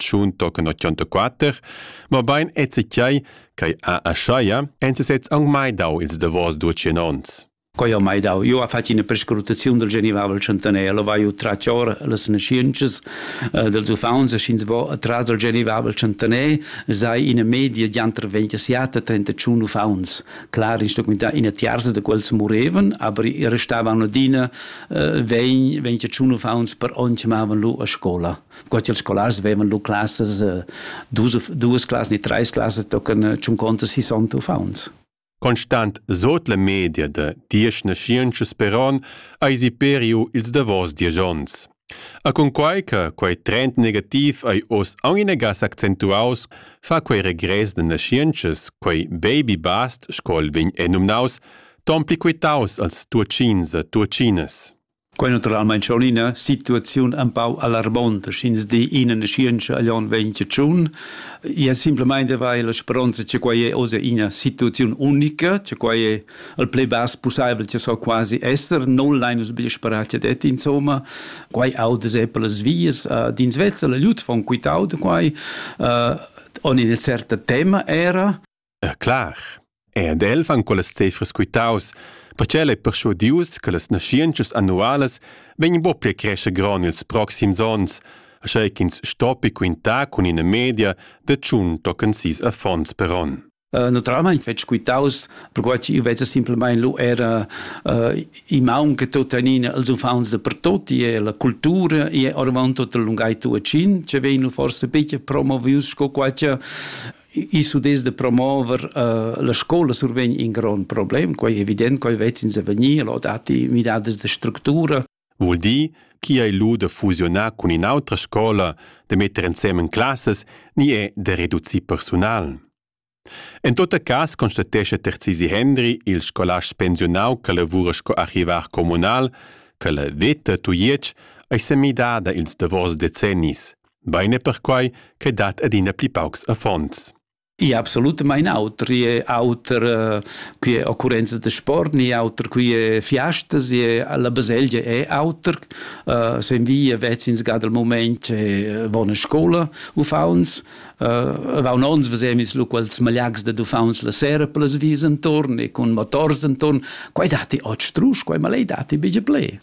tschun tochen 84, mobein ezzichiai ch'ei a Aschaia ensi sez aunc mai dau ils davos ducien onns. Quai ha mai dau. Eu ha fatg ina prescrutaziun del Genivavel Centenaire, lo vai tratg or las nasciences eh, dels uffants e sch'ins vo atras del Genivavel Centenaire sei ina media di anter 27 31 uffants clar instrumentà ina tiarza de quels moreven, aber i restavan adina eh, 20 21 uffants per on chiamavan lu a scola. Qua ils scolars vevan lu classas, eh, dus, duas classas ni treis classas tocan eh, tschuncontas sissant uffants. Constant sot la media de diesch naschientscha speron eisi periu ils davos diesch onns. A cunquai che quei trend negativ ei oz aunc inagas accentuaus, fa quei regress de naschientschas, quei baby bast, sco el vegn enumnaus, ton pli quitaus als tuatschins e tuatschinas. Quei naturalmein schon ina situaziun empau alarmonta, sch'ins di ina naschientscha agl onn ventgatschun. Ia simplemein de vair la speronza che quei è oz ina situaziun unica, che quei è il pli bass pusseivel che so quasi esser, non lein nus bia sperar che det, insomma. Quei auda se per las vias, uh, d'ins vezza la lut von quitau de quei, uh, on ina certa tema era, E clar, è ed el van quellas cefras quitaus, perche el ei perschudius che las naschientschas annualas vegn buca pli a crescher gron ils proxims onns, aschei ch'ins stoppi quintar cun ina media de tschun tochen sis affons per onn. Uh, naturalmein fetg quitaus, perquai ch'io vezza simplamain lu era uh, i maun che tuttenina els uffants da pertoti e la cultura e ormai tut la lungai tuacin, che vegnu forse bitte promovius sco quai che I s'udess da promover uh, la scola survegn in grond problem, quai è evident, quai vezzins a vegnir, lo datti midadas de structura. Vul dir chi ei lu da fusionar cun in'autra scola, de metter ensemen classas, ni è da reducir personal. En tot cas constatesce Terzisi Hendri, il scolast pensionau che lavora sco archivar comunal, che la veta Tujetsch ei semidada ils davos decennis. Bein è perquai che dat adina pli paucs affons. I absolutamain auter, i è auter eh, qui è occurrenza da sport, ni auter qui è fiastas, la baselgia è auter, uh, sen via vezzins ga dal moment è buona scola uffauns, uh, vaun ons vesemis lu quels malags da uffauns la sera per las vis intorn e con motors intorn, quai dati ot strus, quai malei dati bige ple.